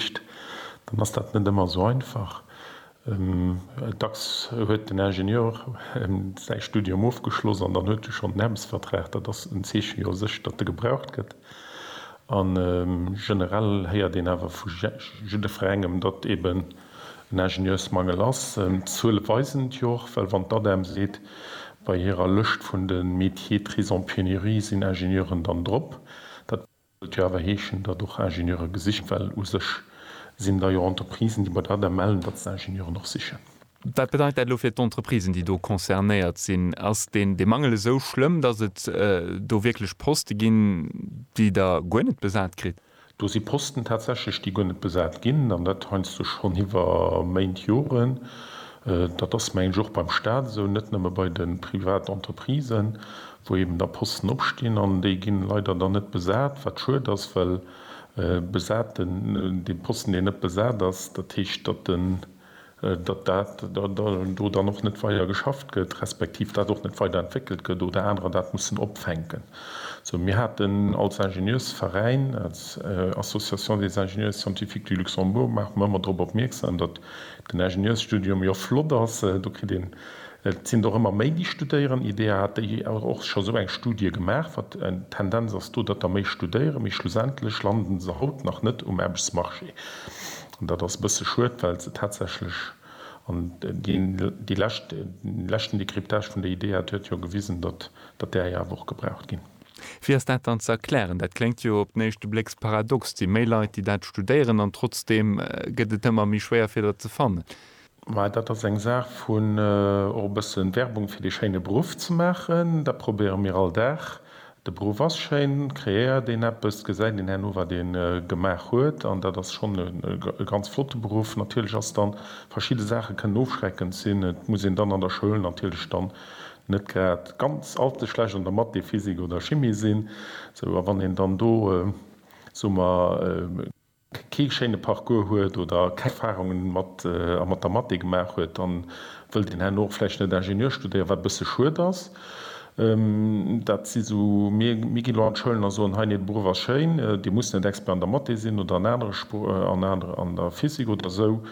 Liicht, dann ass dat net ëmmer esou einfach. Dacks huet den Ingenieur säi Studium ofgeschloss an dann huet e schonn den Aarbechtsvertrag. Dat ass en Zeechen jo u sech, datt e gebraucht gëtt. A generell héiert een awer vu jiddefrengem, datt eben en Ingenieursmangel ass. D'Zuele weisen et jo och, well wann d'ADEM seet, bei hirer Lëscht vun de Métiers très en pénurie sinn Ingenieuren dann drop, dat. Sollt jo awer heeschen, datt och Ingenieure gesicht, well u sech sinn da jo Entreprisen, déi bei der adr mellen, datt se Ingenieuren och sichen. Wat bedeit dat elo fir d'Entreprisen, déi do concernéiert sinn? Ass deen dee Mangel esou schlëmm, datt et do wierklech Poste ginn, déi Der guer net besat kritt? Do si Posten tatsächlech, déi guer net besat ginn, an dat heiansdo schonn iwwer Méint, Joren. Dat ass, mengen ech, och beim Stat esou, net nëmme bei de Privatentreprisen, wou eben da Posten opstinn an déi ginn leider dann net besat, wat schued ass, well besaten, dee Posten deen net besat ass, dat heescht datt den, datt dat do dann och net weider geschafft gëtt, respektiv dat och net weider entwéckelt gëtt oder anerer dat mussen opfänken. Sou mir haten als Ingenieursveräin, als Association des ingénieurs scientifiques du Luxembourg maache mer ëmmer drop opmierksam, datt den Ingenieursstudium jo flott ass, do kritt een Et sinn et och ëmmer méi, déi studéieren. IDEA hat déi Joer och scho sou eng Studie gemaach, wat d'Tendenz ass do, datt der méi studéieren. Mee schlussendlech landen se haut nach net um Aarbechtsmarché. An dat ass e bësse schued, well se tatsächlech, an déi lescht, dee leschten Décryptage vun der IDEA, dat huet jo gewisen, datt där jo awer och gebraucht ginn. Wéi ass dat dann ze erklären? Dat kléngt jo op den éischte Blécks paradox. Et si méi Leit, déi dat studéieren, an trotzdeem gëtt et ëmmer méi schwéier, fir der ze fannen. Mä dat ass eng Saach vun och e bësse Werbung fir dee schéine Beruff ze maachen. Dat probéiere mir all Dag. De Beruff ass schéin, kreéiert een eppes, gesäit een herno, wat ee gemaach huet. An dat ass schonn e ganz flotte Beruff. Natierlech ass dann, verschidde Saache kënnen ofschreckend sinn. Et muss een dann an der Schoul natierlech dann net grad ganz allze schlecht an der Math, Physik oder Chimie sinn. Sou, a wann een dann do, soe mer, kee schéine Parcours huet oder keng Erfarunge mat a mat der Mathé gemaach huet, dann wëll deen herno och vläicht net Ingenieur studéieren, wat e bësse schued ass. Dat si sou, mir, mir ginn elo an d'Schoulen a soen, hei, nee, de Beruff ass schéin, Dir musst net Expert an der Mathé sinn oder an anere Spr, an anere, an der Physik oder esou,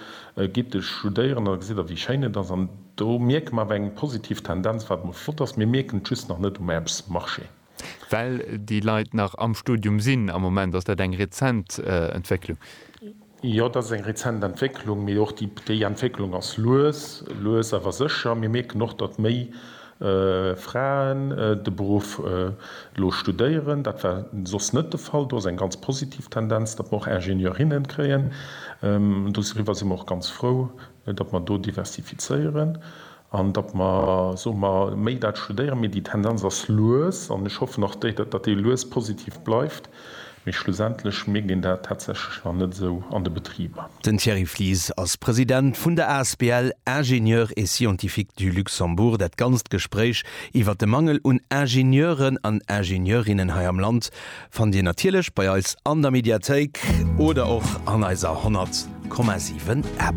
gitt e studéieren, da gesitt Der, wéi schéin et ass. An do mierke mer awer eng positiv Tendenz, wat emol flott ass. Mir mierken et just nach net um Aarbechtsmarché. Well déi Leit nach am Studium sinn am Moment. Ass dat eng rezent Entwécklung? Jo, dat ass eng rezent Entwécklung, mee och déi Entwécklung ass lues, lues awer sécher. Mir mierken och, datt méi Fraen de Beruff elo studéieren. Dat war soss net de Fall. Do ass eng ganz positiv Tendenz, datt mer och Ingenieurinne kréien. Doriwwer si mer och ganz frou, datt mer do diversifizéieren. An datt mer, soe mer, méi dat studéieren. Mee déi Tendenz ass lues, an ech hoffen och, datt déi lues positiv bleift. Mee schlussendlech mierkt een dat tatsächlech nach net esou an de Betriber. Den Thierry Flies ass President vun der asbl Ingénieurs et Scientifiques du Luxembourg. Dat ganzt Gespréich iwwert de Mangel un Ingenieuren an Ingenieurinnen hei am Land fannt Dir natierlech bei eis an der Mediathéik oder och an eiser 100,7 App.